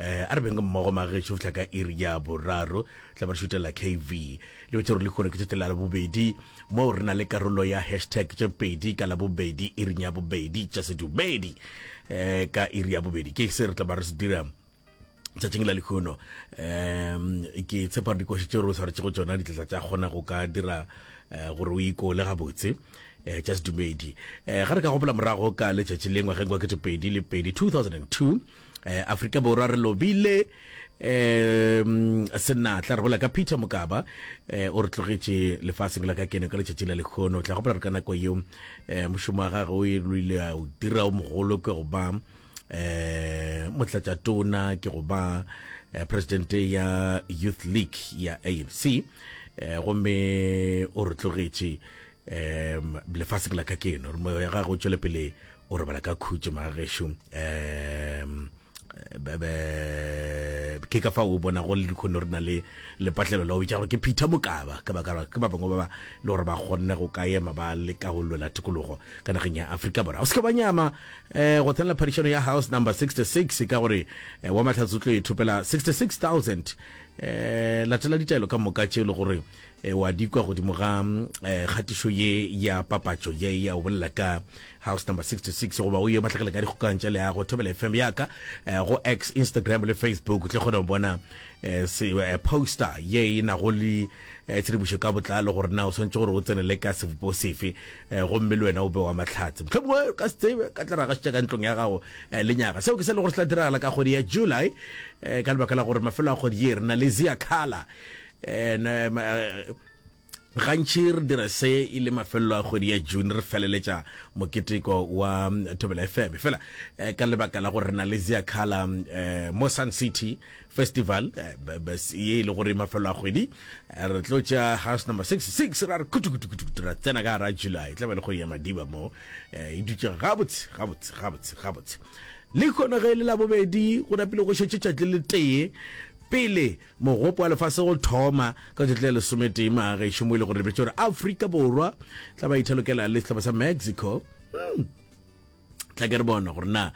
eh a re beng mmogo magetšo go fihla ka iri ya boraro tla ba re šutela kv le betse gore le kgone ke tsote la labobedi moo re na le karolo ya hashtag tše pedi ka labobedi iring ya bobedi tša sedumedi um ka iri ya bobedi ke se re tla ba re se dira tšatšing la lekgono um ke tshepa gore dikoši tše re o tshwaretse go tsona ditletla tša kgona go ka dira eh, gore o ikole gabotse eh, just dumedi eh, ga re ka gopola morago ka letšatši lengwe ge ngwakete pedi le pedi 2002 eh, afrika borwa re lobile um senatla re bola ka peter mokaba eh, o re tlogetše lefaseng la ka kene ka letšatši la lekgono o tla gopola re ka nako yeo um eh, mošomo wa gage o e loile a o dira o mogolo ke go ba eh motlatša tona ke go ba eh, president ya youth league ya anc eh gomme o re tlogetše um lefase ke la ka keno re moya gagwe o tšwele pele o robala ka khutše magagešu um ke ka fa o bona go le dikgone re na le lepatlelo la o bitsa gore ke phitha mokaba ka baka ke ba bangwe ba ba le gore ba kgonne go ka ema ba le ka go lwela tikologo ka nageng ya aforika borwa o seke ba nyama um go tsenela phadišano ya house number 66 ka gore eh, wa mahlatse o tlo e thopela 66000 um latela ditaelo ka moka tše e le gore e wa di kwa godimo ga eh, kgatišo ye ya papatšo ye ya o bolela ka house number 66 goba o ye matlakala ka dikgokang tša leago thobela fm ya ka eh, go x instagram le facebook tle kgone go bona eh, se eh, poster ye e nago le eh, tshedimošo ka botlalo gore na o swantse gore o tsenele ka sebopo sefe eh, gomme le wena o be wa matlhatse mohlomongwe ka se tsebe ka tla ragasitša ka ntlong ya gago eh, lenyaga seo ke se le gore se tla diragala ka kgwedi ya july eh, ka lebaka la gore mafelo a kgwedi ye re na le zia kala and um, uh, gantši re dira se e le mafelelo a kgwedi ya june re feleletša moketeko wa um, thobela fm fela uh, ka lebaka la gore re na le ziakhala um, uh, mo sun city festival uh, ye e le gore mafelelo a kgwedi uh, re tlo tša house number 66 ra re kutukutukutu ra tsena ka gara july tla ba le kgwedi ya madiba mo uh, e dutše gabotse gabotse gabotse gabotse le kgona ge e le labobedi go napile go šetše tšatli le tee pele Mogopo wa Lefase go thoma ka tšatši la lesometee Magešu mo e le gore lebetše gore Afrika Borwa tla ba ithalokela le sehlopha sa Mexico. Hmm. Tla ke re bona gore na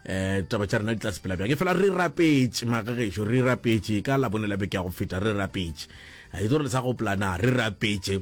eh taba tša rena di tla sepela bjang e fela re rapetše magagešo re rapetše ka labone la beke ya go feta re rapetše a itse gore le sa go plana re rapetše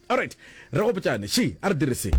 Alright, re gopotšane, she, a re dire se.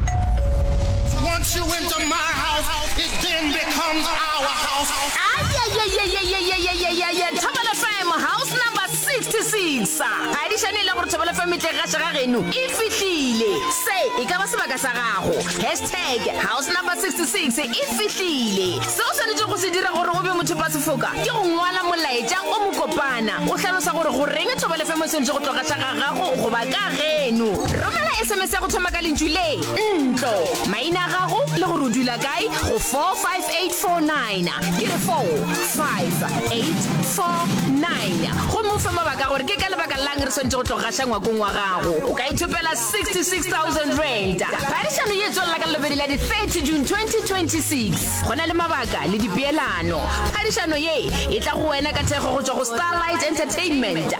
Once you enter my house, it then becomes our house. Ayayayayayayayayayaya Thobela FM house number 66 ga di šane e le gore Thobela FM tle ga šega geno e fihlile se e ka ba sebaka sa gago hashtag house number 66 e fihlile se o swanetše go se dira gore o be motho ba sefoka ke go ngwala molaetša o mokopana o hlalosa gore go reng Thobela FM o swanetše go tloga hlaga gago goba ka geno. Romela SMS ya go thoma ka lentšu le, ntlo, maina a gago le gore o dula kae go 45849. Ke re 45849 gomme o fe mabaka gore ke ka lebaka lang re swanetse go tlo gaša ngwakong wa gago. O ka ithopela 66000 rand. Phadišano ye tswelela ka lobedi la di-30 june 2026 go na le mabaka le dipeelano phadišano ye e tla go wena ka thekgo go tswa go starlight entertainment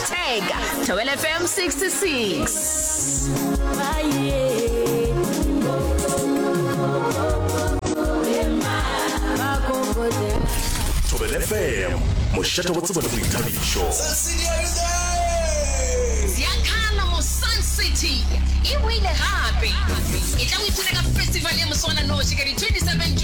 Tag, Thobela FM 66. Thobela FM, mošate wa tsebo le boithabišo. Ziakhala mo Sun City e boile gape. E tla o ipuna ka festival ya moswananoši ka di 27 June.